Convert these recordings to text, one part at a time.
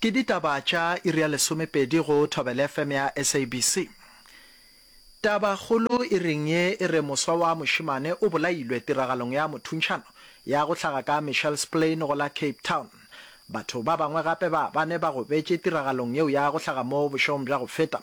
Ke ditaba tša iri ya lesomepedi go Thobela FM ya SABC. Tabakgolo iring ye e re moswa wa mošemane o bolailwe tiragalong ya mothuntšhano ya go hlaga ka Mitchellsplein go la Cape Town. Batho ba bangwe gape ba bane ba gobetše tiragalong yeo ya go hlaga mo bošegong bja go feta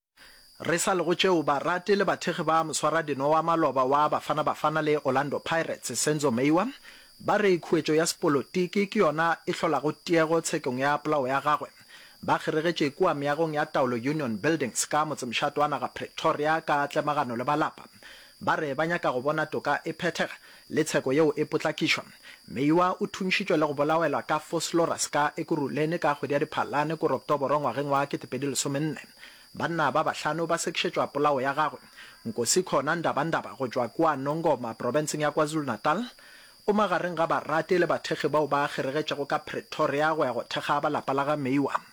Re sa le go tšeo, barati le bathekgi ba moswaradino wa maloba wa Bafana Bafana le Orlando Pirates, Senzo Meyiwa, ba re khuetšo ya sepolotiki ke yona e hlolago tiego tshekong ya polao ya gagwe. Ba kgeregetše kua meagong ya taolo Union Buildings ka motsemšato wa naga Pretoria ka tlemagano le ba lapa. Ba re ba nyaka go bona toka e phethega Le tsheko yeo e potlakišwa. Meiwa o thuntšhitšwe le go bolawelwa ka Vosloorus ka Ekurhuleni ka kgwedi ya Diphalane kore Oktoboro ngwageng wa 2014. Banna ba bahlano ba sekišetšwa polao ya gagwe. Nkosi Khona Ndabandaba go tšwa kua Nongoma profenseng ya KwaZulu-Natal o magareng ga barate le bathekgi bao ba kgeregetšego ka Pretoria go ya go thekga ba lapa la ga Meiwa.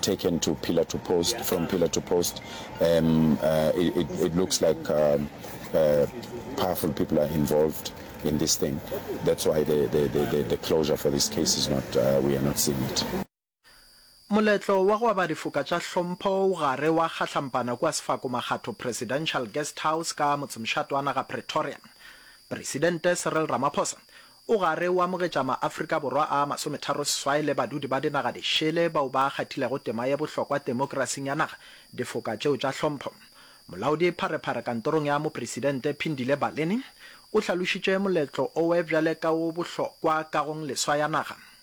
taken to pillar to post from pillar to post um, uh, it, it, it, looks like um, uh, powerful people are involved in this thing that's why the, the, the, the closure for this case is not uh, we are not seeing it Moletlo wa go aba difoka tša hlompho o gare wa kgahlampana kua Sefako Makgatho Presidential Guest House ka motsemšatoana ga Pretoria. Presidente Cyril Ramaphosa O gare o amogetša maAfrika Borwa a masometharoseswai le badudi ba dinaga di šele bao ba kgathilego tema ye bohlokwa temokrasing ya naga difoka tšeo tša tlhompho. Molaodi pharephare kantorong ya mopresidente Phindile Baleni o hlalošitše moletlo owe bjale ka wo bohlokwa kagong leswa ya naga.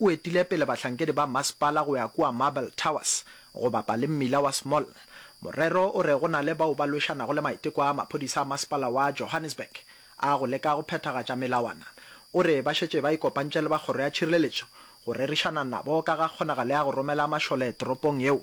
O etile pele bahlankedi ba masepala go ya kua Marble Towers go bapa le mmila wa Small. Morero o re go na le bao ba lwešanago le maiteko a maphodisa a masepala wa Johannesburg a go leka go phethagatša melawana. O re ba šetše ba ikopantše le ba kgoro ya tšhireletšo go rerišana nabo ka ga kgonagalo ya go romela mašole toropong yeo.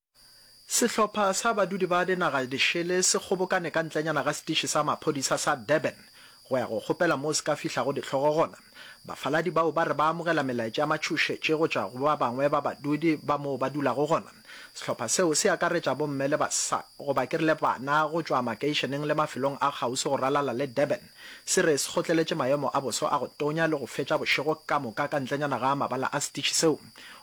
Sehlopha sa badudi ba dinaga di šele se kgobokane ka ntlenyana ga setiši sa maphodisa sa Durban go ya go kgopela moo se ka fihlago dihlogo gona. Bafaladi bao ba re ba amogela melaetša ya matšhošetše go tšwa go ba bangwe ba badudi ba moo ba dulago gona. Sehlopha seo se akaretša bomme le basa, goba ke rile bana, go tšwa makeišeneng le mafelong a kgauswi go ralala le Durban. Se re se kgotleletše maemo a boso a go tonya le go fetša bošego ka moka ka ntlenyana ga mabala a setiši seo.